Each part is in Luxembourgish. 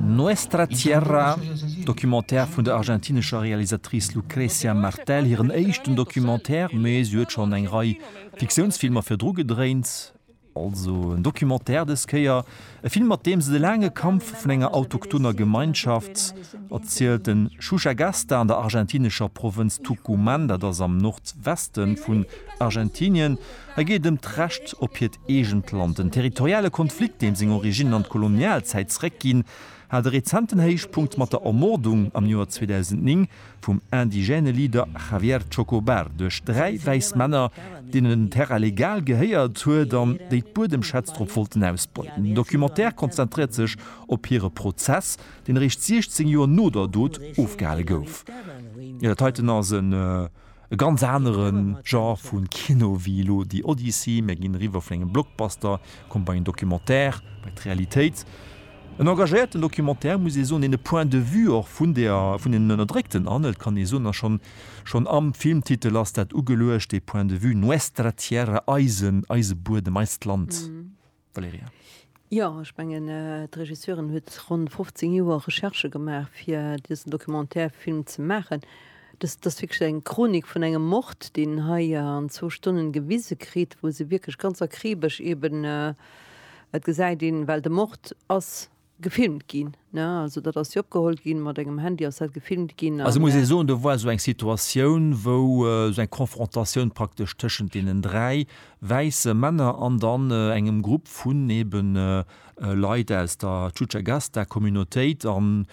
Nuestra Tierra, Documentaire vun der argentinescher Realisatrice Lucrecia Martel, hiren éischten Documentaire, mee si huet schonn eng Rei Fiktiounsfilmer virdru gedréint. Also en Documentaire dës Kéier, e Film mat deem se de laange Kampf vun enger autochtoner Gemeinschaft erzielt. Den Xuxagasta an der argentinescher Provënz Tucumán, dat ass am Nordweste vun Argentinien. Hei geet et ëm d'Recht op hiert Eegent Land. Den territoriale Konflikt, deem seng Originnen an d'Kolonialzäit zeréckginn, hat e rezenten Héichpunkt mat der Ermordung am Joer 2009 vum indigène Leader Javier Chocobar duerch dräi wäiss Männer, deenen en Terrain legal gehéiert huet an déi d'Buedemschätz drop wollten ausbeuten. Den Documentaire konzentréiert sech op hire Prozess, deen eréischt 16 Joer no der Dot ofgehale gouf. E ganz anere Genre vu Kino wéi elo The Odyssey, mir ginn eriwwer vun engem Blockbuster, komme bei en Documentaire, bei d'Realitéit. En engagéierten Documentaire, muss ee soen, deen de Point de vue och vun der, vun den Ënnerdréckten anhëlt, kann ee soen, a schonn, schonn am Filmtitel ass dat ugeluecht, de Point de vue, Nuestra Tierra, eisen, eise Buedem, eist Land. Valerija. Jo, ech mengen, d'Regisseurin huet ronn 15 Joer Recherchë gemaach, fir dësen Documentaire-Film ze maachen. Dëst, dat ass wierklech eng Chronik vun engem Mord, deen hei an zwou Stonnen gewise kritt, wou se wierklech ganz akribesch eeben, et gesäit een, well de Mord ass Gefilmt ginn, ne? Also dat ass jo opgeholl ginn, mat engem Handy ass dat gefilmt ginn an. Also muss ee soen, do war esou eng Situatioun, wou esou eng Konfrontatioun praktesch tëschent deenen dräi wäisse Männer an dann engem Grupp vun eben Leit aus der Chuchagasta-Communautéit, an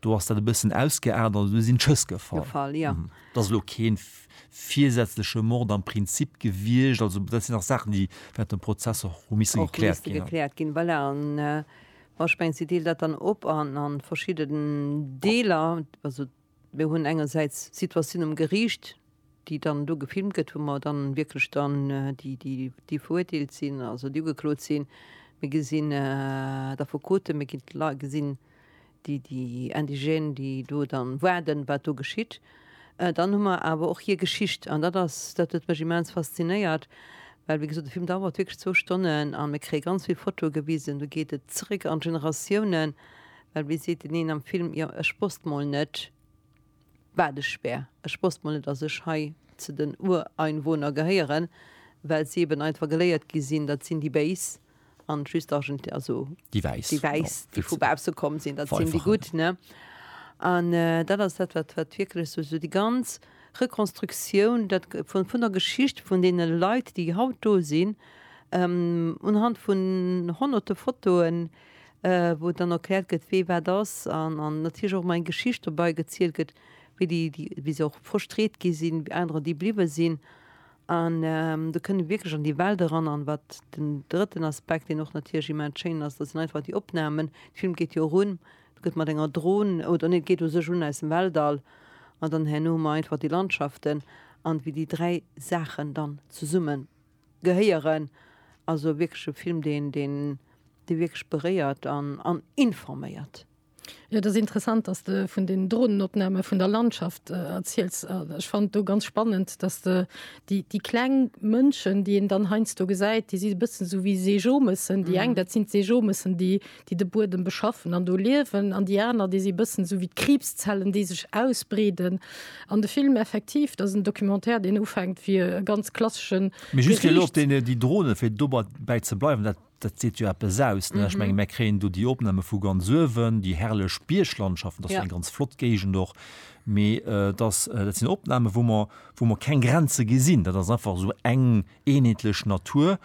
do ass dat e bëssen ausgeaart an do sinn d'Schëss gefall. Gefall, jo. Dat ass elo kee virsätzleche Mord am Prinzip gewiescht. Also dat sinn nach Saachen, déi während dem Prozess och hu misse gekläert ginn. Och misste gekläert ginn, voilà. Bon, ech mengen, si deelt dat dann op a verschidden Deeler. Also mir hunn engersäits d'Situatioun um Geriicht, déi dann do gefilmt gëtt, wou mer dann wierklech dann déi, déi, déi verurteelt sinn, also déi ugeklot sinn, mir gesinn d'Affekoten, mir ginn d'Lei-, gesinn déi déi Indigène déi do dann waarden wat do geschitt, dann hu mer awer och hir Geschicht an dat ass dat huet mech immens faszinéiert, well wéi gesot de Film dauert wierklech zwou Stonnen an mir kréie ganz vill Fotoe gewisen, do geet et zréck an d'Generatiounen, well wéi seet deen een am Film, jo ech wosst mol net, Waadespär. Ech wosst mol net dass ech hei ze den Ureinwohner gehéieren, well si eben einfach geléiert gi sinn, dat sinn déi Béis an just Argenti-, also Déi Wäiss. déi Wäiss, déi vu bausse komm sinn, dat sinn déi Gutt, ne? An dat ass dat, wat, wat wierklech sou, sou déi ganz Rekonstruktioun, dat vun, vun der Geschicht vun deene Leit, déi haut do sinn, unhand vun honnerte Fotoen, wou dann erkläert gëtt wee wat ass an an natierlech och ëmmer eng Geschicht dobei gezielt gëtt, wéi déi déi wéi se och frustréiert gi sinn, wéi anerer déi bliwwe sinn an do kënne wierklech an déi Welt eran. An wat den drëtten Aspekt, deen och natierlech immens schéin ass, dat sinn einfach déi Opnamen. De Film geet jo erun, et gëtt mat enger Dron, oder nee et geet u sech un aus dem Weltall an dann herno hu mer einfach déi Landschaften an wéi déi dräi Saachen dann zesummen Gehéieren. Also wierklech e Film, deen wierklech beréiert an informéiert. Jo, et ass interessant, dass de vun den Drohnenopname vun der Landschaft erziels. Ech fannen do ganz spannend, dass de déi kleng Mënschen, déi een dann heiansdo gesäit, déi si e bëssen esou wéi Seejomëssen. Déi eng, dat sinn d'Seejomëssen, déi. déi de Buedem beschaffen an do liewen, an déi aner, déi si bëssen esou wéi d'Kriibszellen, déi sech ausbreeden. An de Film effektiv, dat ass en Documentaire, deen ufänkt wéi e ganz klasseschen Mee just fir elo op Gerichts... déi, déi Drohne, fir dobäi ze bleiwen, dat, dat seet jo eppes aus, ne? Ech menge mer kréien do déi Opname vu ganz uewen, déi herrlech Bierglandschaften, dat ass jo Ja. eng ganz flott Géigend och, mee dat ass, dat sinn Opname wou mer, wou mer keng Grenze gesinn, dat ass einfach esou eng, eenheetlech Natur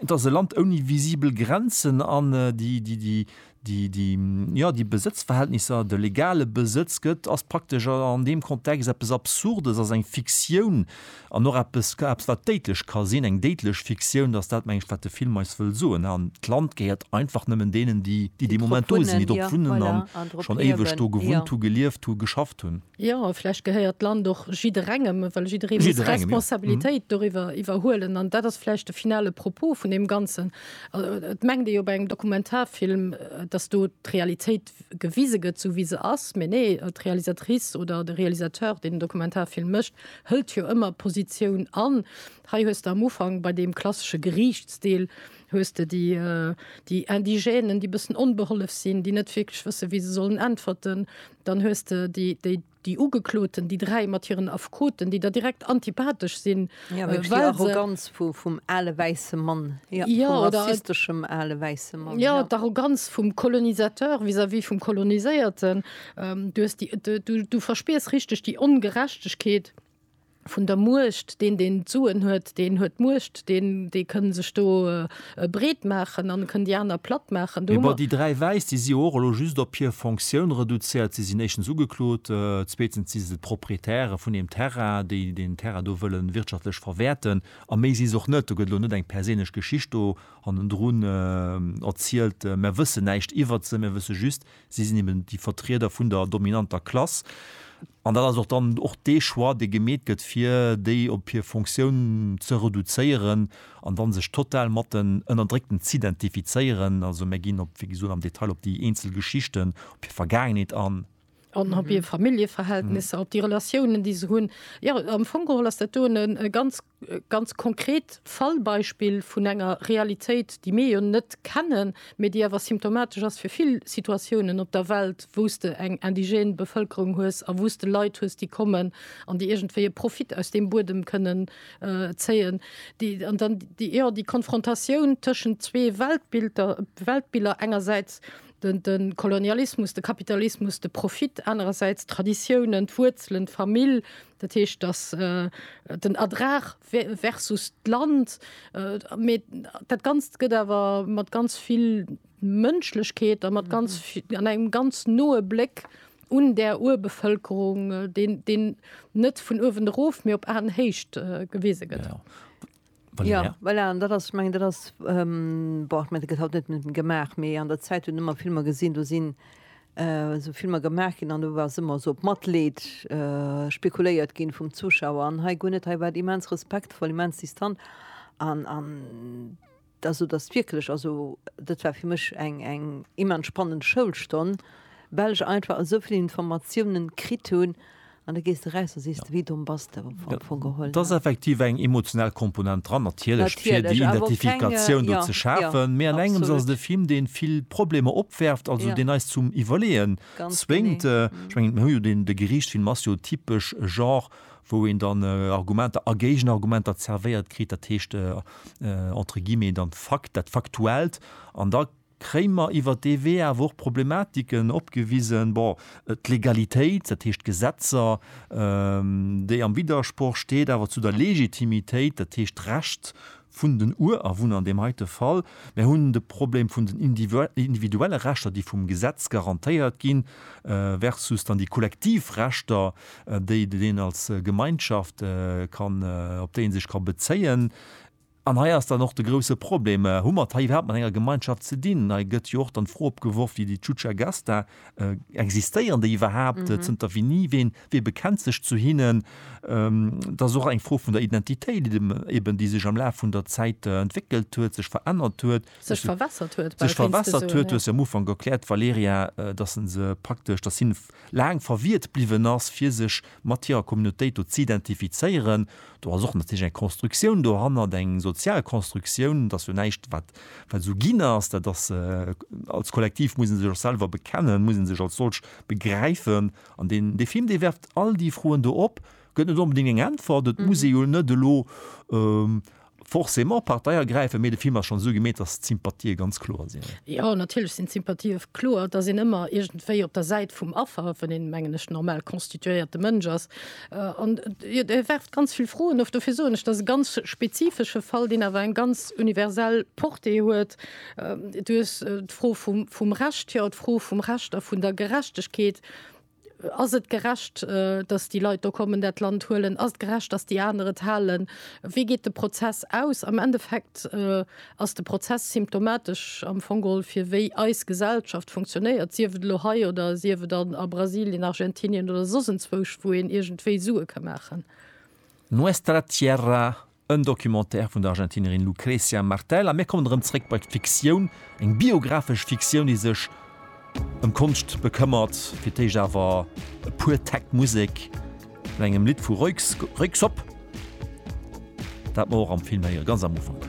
dat se Land ouni visibel Grenzen an déi déi déi déi déi jo déi Besëtzverhältnisser de legale Besëtz gëtt ass praktesch an deem Kontext eppes absurdes ass eng Fiktioun an och eppes ka eppes wat déidlech ka sinn eng déidlech Fiktioun datt dat meng ech wat de Film eis wëll soen an d'Land gehéiert einfach nëmmen deenen déi déi dee Moment do sinn déi drop wunnen an schonn éiweg do gewunnt hu gelieft hu geschafft hunn. Jo, a vläicht gehéiert d'Land och jidderengem, well jidderee muss Jidderengem, jo. Responsabilitéit doriwwer iwwerhuelen. An dat ass vläicht de finale Propos vun deem Ganzen. Et mengt ee jo bei engem Dokumentarfilm, datt do d'Realitéit gewise gëtt, esou wéi se ass. Mee nee, d'Realisatrice oder de Realisateur, deen en Dokumentarfilm mécht, hëlt jo ëmmer Positioun an. Hei hues de am Ufank bei deem klassesche Geriichtsdeel hues de déi, déi Indigènen, déi bëssen onbehollef sinn, déi net wierklech wësse wéi se sollen äntwerten. Dann hues de déi, déi, déi Ugekloten, déi dräi mat hiren Affekoten, déi der direkt antipathesch sinn, well se. Jo, wierklech déi Arroganz vu, vum ale wäisse Mann, jo, vum rassisteschem ale wäisse Mann. Jo, d'Arroganz vum Colonisateur vis-à-vis vum Koloniséierten. Du hues déi, du verspiers richteg déi Ongerechtegkeet. vun der Muecht, deen deen d'Suen huet, deen huet d'Muecht, deen dee kënn sech do breet maachen an kënn déi aner platt maachen. Do hu mer. Déi dräi Wäiss, déi si jo och elo just op hir Fonctioun reduzéiert. Si sinn éischtens ugeklot, zweetens si se d'Proprietäre vun deem Terrain, déi deen Terrain do wëlle wirtschaftlech verwäerten. A méi si se och net. Do gëtt elo net eng perséinlech Geschicht do hannendrun erzielt, Mär wëssen näischt iwwert se. Mir wësse just, si sinn eben déi Vertrieder vun der dominanter Klass. An dat ass och dann och dee Choix, dee gemeet gëtt, fir déi op hir Fonctioun ze reduzéieren an da sech total mat den Ënnerdréckten z'identifizéieren. Also mir ginn op, wéi gesot, am Detail op déi eenzel Geschichten, op hir Vergaangenheet an. An op hir Familljeverhältnisser, op déi Relatiounen, déi se hunn. Jo, am Fong geholl ass dat do e ganz Ganz konkret Fallbeispill vun enger Realitéit, déi mir jo net kennen, mee déi awer symptomatesch ass fir vill Situatiounen op der Welt, wou s de eng indigène Bevëlkerung hues a wou s de Leit hues, déi kommen an déi iergendwéi e Profit aus deem Buedem kënnen zéien. Déi, an dann déi, jo, déi Konfrontatioun tëschent zwee Weltbilder, Weltbiller, engersäits de Kolonialismus, de Kapitalismus, de Profit, anerersäits d'Traditiounen, d'Wuerzelen, d'Famill, Dat heescht, dass den Erdrag versus d'Land, mee dat Ganzt gëtt awer mat ganz vill Mënschlechkeet a mat ganz an engem ganz noe Bléck un där Urbevëlkerung, deen net vun uewen erof, mee op Aenhéicht gewise gëtt. Ja, voilà, an dat ass, ech mengen, dat ass, bon, ech mengen, dat gëtt haut net nëmmen gemaach, mee an der Zäit hunn ëmmer Filmer gesinn, do sinn esou Filmer gemaach ginn an do ass ëmmer esou op Matleed spekuléiert ginn vum Zuschauer an hei guer net. Hei war et immens respektvoll, immens distant an, an da sot ass wierklech, also dat war fir mech eng, eng immens spannend Schoulstonn, well ech einfach esou vill Informatiounen kritt hunn, An da gees de raus a sees, de Vide en bass de am Fong geholl. Et ass effektiv eng emotional Komponent dran, natierlech, fir déi Identifikatioun do ze schafen. Mee an engems ass et e Film, dee vill Problemer opwerft, also deen eis zum Iwwerleeë zwéngt. Ech mengen, mir hu jo deen, de Geriichtsfilm ass jo typesch e Genre, wou een dann Argumenter a Géigenargumenter zerwéiert kritt, dat heescht entre guillemets dann d'Fakt, dat Faktuellt. An da Krémer iwwer dee Wee awer och Problematiken opgewisen, bon, d'Legalitéit, dat heescht d'Gesetzer, déi am Widdersproch steet awer zu der Legitimitéit, dat heescht d'Recht vun den Urawunner an deem heite Fall. Mir hunn de Problem vun den individuelle Rechter, déi vum Gesetz garantéiert ginn, versus dann déi kollektiv Rechter, déi een als Gemeinschaft kann, op déi ee sech ka bezéien. An hei ass dann och de grousse Problem, Hu mer et hei iwwerhaapt mat enger Gemeinschaft ze dinn? Hei gëtt jo och dann d'Fro opgeworf, déi déi Chucha Gasta, Existéieren déi iwwerhaapt? Zënter winni? Ween, wee bekennt sech zu hinnen? Dat ass och eng Fro vun der Identitéit eben, eben déi sech am Laf vun der Zäit entwéckelt huet, sech verännert huet. Sech verwässert huet, bal, kéints de soen. Sech verwässert huet. Du hues jo am Ufank erkläert, Valerija, dass se praktesch, dass si laang verwiert bliwwen ass, fir sech mat hirer Communautéit do z'identifizéieren. Do ass och natierlech eng Constructioun dohannert, eng sozial Constructioun. Et ass jo näischt, wat esou ginn ass. Dat ass, als Kollektiv muss ee sech och selwer bekennen, muss ee sech als solch begräifen. An deen, dee Film, dee werft all déi Froen do op, gëtt net onbedéngt eng Äntwert. Et muss ee jo net elo, Forcément Partei ergräifen, mee de Film ass schonn esou gemeet, dass d'Sympathië ganz kloer sinn. Jo, natierlech sinn d'Sympathië kloer. Et ass een ëmmer iergendwéi op der Säit vum Affer, wann een, mengen ech, normal constituéierte Mënsch ass. An jo, e werft ganz vill Froen of. Dofir soen ech, et ass e ganz spezifesche Fall, deen awer eng ganz universell Portée huet. Du hues d'Fro vum Recht, jo, d'Fro vum Recht a vun der Gerechtegkeet. Ass et gerecht, datt déi Leit do kommen, dat Land huelen? Ass et gerecht, datt déi aner et halen? Wéi geet de Prozess aus? Am Endeffekt ass de Prozess symptomatesch am Fong geholl fir wéi eis Gesellschaft funktionéiert, sief et elo hei oder sief et an a Brasilien, Argentinien oder soss enzwousch, wou een iergendwéi Sue ka maachen. Nuestra Tierra En Documentaire vun der Argentinerin Lucrecia Martel a mir kommen erëm zréck bei d'Fiktioun, eng biographesch Fiktioun, déi sech ëm Konscht bekëmmert. Fir d'éischt awer e puer Takt Musek vun engem Lidd vu Röyksopp, dat mer och am Film héieren, ganz am Ufank.